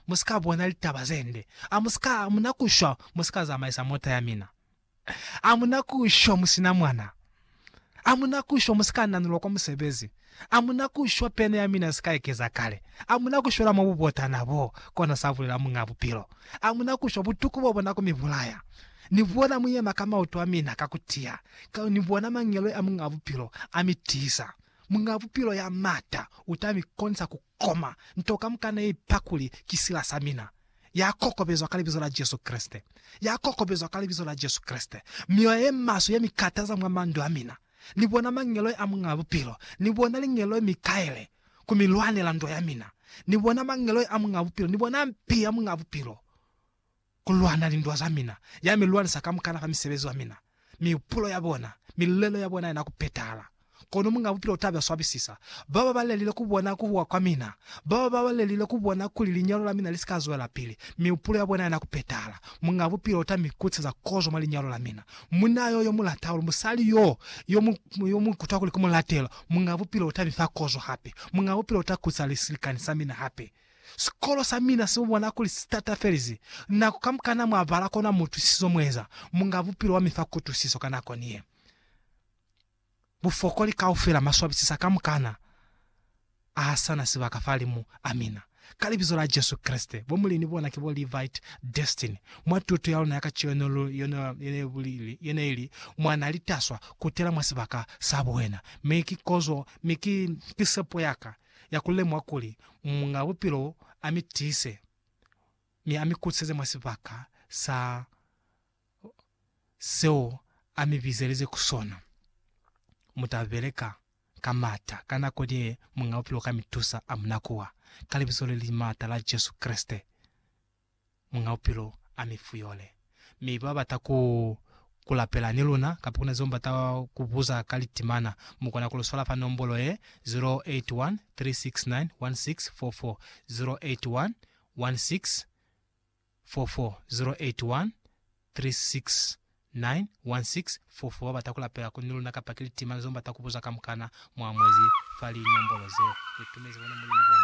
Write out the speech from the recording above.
musika bona litaba zende, amusika amuna kushwa musika zamaisa mota yamina, amuna kushwa musina mwana, amuna kushwa musika nanulwa kwa musebezi, amuna kushwa pene yamina isika ekeza kale, amuna kushwela mwa bubotana bo, kona sa bulela Muñ'a Bupilo. Amuna kushwa butuku bobona ku mi bulaya. Ni bona mu yema ka mautu amina ka ku tiya, ka ni bona mangeloi a Muñ'a Bupilo a mi tiisa. Muñ'a Bupilo ya mata uta mi konisa ku Koma, nto kamukana ye ipa kuli ki sila sa mina. Ya kokobezwa ka Libizo la Jesu Kreste. Ya kokobezwa ka Libizo la Jesu Kreste. Mioya ye maswe ye mi kataza mwa mandu a mina. Ni bona mangeloi a Muñ'a Bupilo. Ni bona lingeloi mi kaile ku mi lwanela ndo ya mina. Ni bona mangeloi a Muñ'a Bupilo. Ni bona mpi ya Muñ'a Bupilo ku lwana lindwa za mina, ya mi lwanisa ka mukana fa misebezi wa mina, mihupulo ya bona, milelo ya bona ina ku petahala. Kono Muñ'a Bupilo u ta ba swabisisa bao ba balelile ku bona ku huwa kwa mina, bao ba balelile ku bona kuli linyalo la mina li si ka zwelapili, mihupulo ya bona ina ku petahala. Muñ'a Bupilo u ta mi kutiseza kozo mwa linyalo la mina. Munna yo, yo mu lata hahulu, musali yo, yo mu, yo mu kutwa kuli ku mu latela, Muñ'a Bupilo u ta mi fa kozo hape. Muñ'a Bupilo u ta kutisa lisilikani sa mina hape. Sikolo sa mina si bona kuli si tatafelizi nako kamukana mwa bala kona mu utwisiso mu eza munga bupilo wa mi fa kutusiso ka nako ni ye. Bufokoli kaufela ma swabisisa kamukana a ha sa na sibaka fa limu a mina. Ka Libizo la Jesu Kreste, bo Mulini bona ki bo Levite Destiny, mwa tuto ya luna ya kacenu lu ye ne ili mwa na li taswa kutela mwa sibaka sa buhena, mi ki kozo mi ki, ki sepo ya ka. ya ku lemuha kuli Muñ'a Bupilo a mi tiise mi a mi kutiseze mwa sibaka sa seo a mi bizelize ku sona. Mu ta beleka ka m'ata ka nako ni ye Muñ'a Bupilo ka mi tusa a mu nakuwa, ka libizo le li m'ata la Jesu Kreste. Muñ'a Bupilo a mi fuyole. Mi ba bata ku ku lapela ni luna, kapa ku na zeo bata ku buza ka litimana, mu kona ku lu swala fa nombolo ye, 0813691644, 0813691644. Ba bata ku lapela ku ni luna kapa ki litimana zeo bata ku buza kamukana mwa mwezi fa linombolo zeo. Lu tumezi bona Mulimu bona.